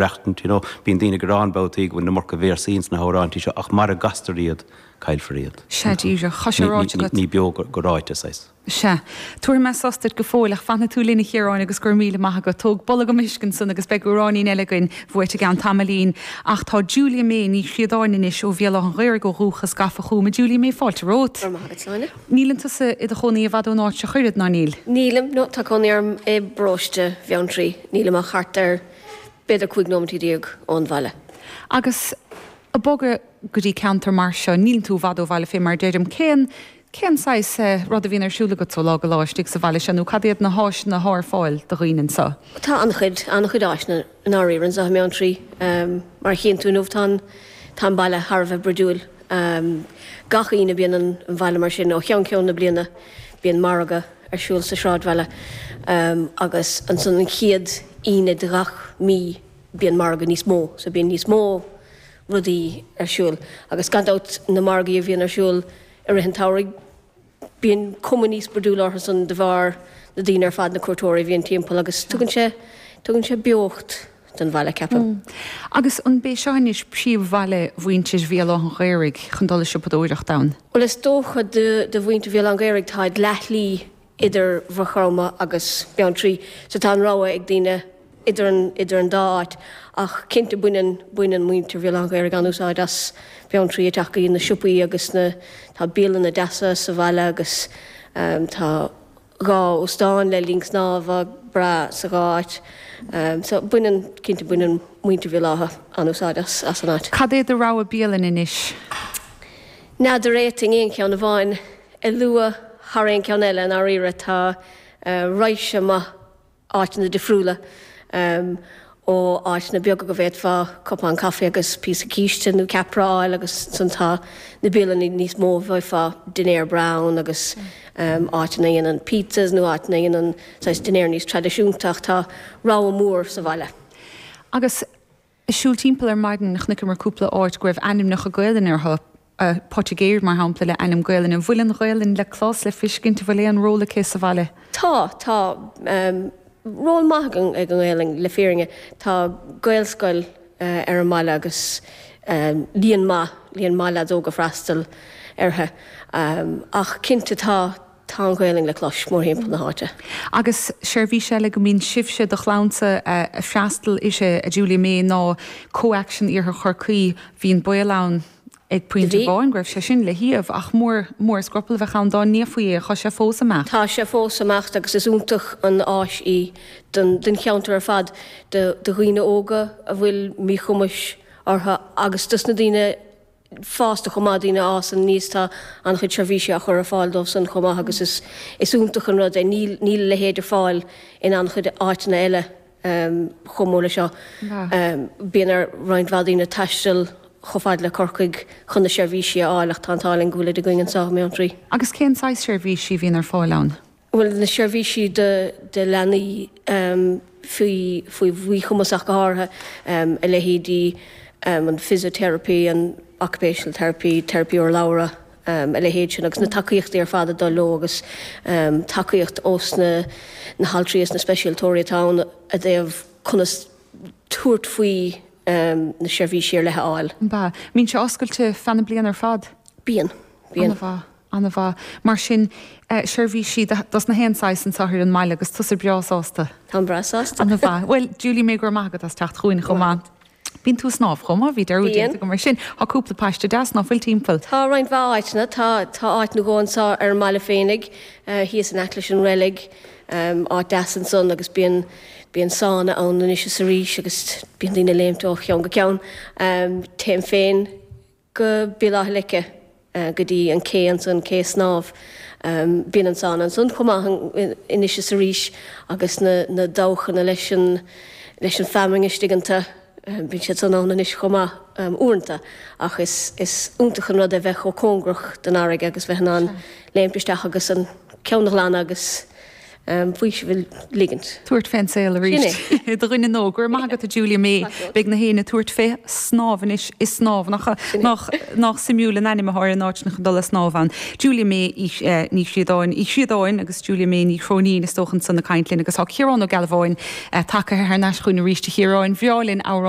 reachtaint, you know. Bíonn daoine ag gearán babhtaí go bhfuil an iomarca véarsaí ins na hamhráintí seo, ach mara gcastar iad, caillfear iad. Sea, díreach. Tá sé ráite agat. Ní beo go ráite, saghas. Sea. Tabharfaidh mé sos duit go fóill, ach fanfaidh tú linn, a Chiaráin, agus go raibh míle maith agat. Tóg bolgam uisce ansan, agus beidh amhráinín eile againn bhuait i gceann tamaillín. Ach tá Julia May Ní Chríodáin anois, ó Bhéal Átha'n Ghaorthaidh ó dhúchas, gafa chugam. A Julia May, fáilte romhat. Go raibh maith agat, Áine. Níleann tusa i do chónaí i bhfad ón áit seo, ach oiread, ná níl? Nílim, no. Tá cónaí orm i bparóiste Bheanntraí. Nílim ach thart ar. b'fhéidir cúig nóimintí déag ón bhaile. Agus ag bogadh go dtí ceantar mar seo, níleann tú i bhfad ó bhaile fé mar a deirim. Cén, cén saghas eh, rud a bhíonn ar siúl agatsa ó lá go lá istigh sa bhaile seo nó cad iad na háiseanna atá ar fáil do dhaoine anseo? Tá an-chuid, an-chuid áiseanna i ndáiríre anseo i mBeanntraí. Ehm, mar a chíonn tú inniu tá an, tá an baile thar a bheith broidiúil. Ehm, gach Aoine bíonn an, an bhaile mar sin ó cheann ceann na bliana. Bíonn margadh. ar siúl sa sráidbhaile agus ansan an chéad Aoine de ghach mí bíonn margadh níos mó, so bíonn níos mó rudaí ar siúl agus gan dabht na margaí a bhíonn ar siúl i rith an tsamhraidh bíonn cuma níos broidiúla orthu san de bharr na daoine ar fad, na cuairteoirí a bhíonn timpeall agus tugann sé, tugann sé beocht. don bhaile, ceapaim. Agus an b'é seo anois príomh-bhaile mhuintir Bhéal Átha'n Ghaorthaidh chun dul ag siopadóireacht ann? Bhuel, is dócha do mhuintir Bhéal Átha'n Ghaorthaidh táid leath-shlí idir Mhaigh Chromtha agus Beanntraí, so tá an rogha ag daoine idir an dá áit, ach cinnte baineann baineann muintir Bhéal Átha'n Ghaorthaidh an-úsáid as Beanntraí ag teacht go dtí na siopaí agus na tá bialanna deasa sa bhaile agus tá dhá óstán le linn snámha breá sa dhá áit. So baineann, cinnte baineann muintir Bhéal Átha an-úsáid as an áit. Cad é do rogha bialann anois? N'fheadar an bhféadfainn aon cheann amháin a lua thar aon cheann eile i ndáiríre. Tá raidhse maith áiteanna difriúla, ó áiteanna beaga go bhféadfá cupán caife agus píosa císte nó ceapaire a fháil agus ansan tá na bialanna níos mó a bhfaighfeá dinnéar breá ann agus áiteanna a dhéanann pizzas nó áiteanna a dhéanann saghas dinnéar níos traidisiúnta ach tá rogha mór sa bhaile. Agus. Ag siúl timpeall ar maidin chonaiceamar cúpla áit go raibh ainmneacha Gaelainne orthu, Poitigéir, mar shampla, le ainm Gaelainne. Bhfuil an Ghaelainn le clos, le fiscint? Bhfuil aon ról aici sa bhaile? Tá. Tá ról maith ag an nGaelainn, le fírinne. Tá Gaelscoil ar an mbaile agus líon maith, líon maith leaids óga ag freastal uirthi. Ach cinnte tá. Tá an Ghaelainn le clois mórthimpeall na háite. Agus seirbhís eile go mbíonn sibhse, do chlannsa, a' freastal uirthi, a Julia May, ná Co-Action Iarthar Chorcaí. Bhí an baol ann ag pointe Bhí. amháin go raibh sé sin le hiamh, ach mór, mór an scrupall a bheadh ann dá n-iafaí é. Tá sé fós ag imeacht. Tá sé fós ag imeacht agus is iontach an áis í don, don cheantar ar fad, do, do dhaoine óga a bhfuil míchumais orthu agus dos na daoine fásta chomh maith, daoine a fhásann aníos, tá an-chuid seirbhísí á chur ar fáil dóibhsan chomh maith agus is is iontach an rud é. Níl níl a leithéid ar fáil in an-chuid áiteanna eile chomh mór leis seo. Bíonn ar roinnt mhaith daoine taisteal chomh fada le Corcaigh chun na seirbhísí a fháil ach tá an t-ádh linn go bhfuilid againn anseo i mBeanntraí. Agus cén saghas seirbhísí a bhíonn ar fáil ann? Bhuel, na seirbhísí do leanaí faoi mhíchumas ach go háirithe, a leithéidí an physiotherapy, an occupational therapy, teiripí urlabhra, a leithéid sin agus na tacaíochtaí ar fad ag dul leo agus tacaíocht ós na haltraí is na speisialtóirí atá ann i dtaobh conas tabhairt faoi na seirbhísí ar leith a fháil. An mbíonn sé oscailte feadh na bliana ar fad? Bíonn. Bíonn. An-mhaith. An-mhaith, mar sin. Seirbhísí dos na haon saghas anseo ar an mbaile agus tusa breá sásta. Táim breá sásta. An-mhaith. Bhuel, Julia May, go raibh maith agat as teacht chugainn chomh maith. Bíonn tú ag snámh chomh maith, bhí dearúd déanta Bíonn. agam air sin. Tá cúpla paiste deas ná fuil timpeall. Tá roinnt mhaith áiteanna. Tá, tá áit nó dhó anseo ar an mbaile féinig, thíos in aice leis an reilig, áit deas ansan agus bíonn, bíonn sána ann anois is arís agus bíonn daoine ag léimt ó cheann go ceann. Téim féin. go Béal Átha Leice go dtí an ché ansan, Cé Snámh. Bíonn an sána ansan chomh maith anois is arís agus na dabhchanna leis an leis an feamainn istigh iontu. Bíonn siad san ann anois chomh maith uaireanta ach is is iontach an rud é bheith chomh cóngarach don fharraige agus bheith in ann léimt isteach agus an ceann a ghlanadh agus um faoiseamh a ligint. Tabhairt fén saol arís id dhuine nua. Go raibh maith agat a Julia May. Beidh na héinne ag tabhairt fé shnámh anois i Snámh. Nach nách suimiúil an ainm atá ar an áit nach ag dul a' snámh ann. Julia May Ní Chríodáin Uí Chríodáin agus Julia May Ní Chróinín is dócha ansan ag caint linn agus tá Ciarán Ó Gealbháin tagtha thar n-ais chugainn arís. A Chiaráin bhreá linn amhrán a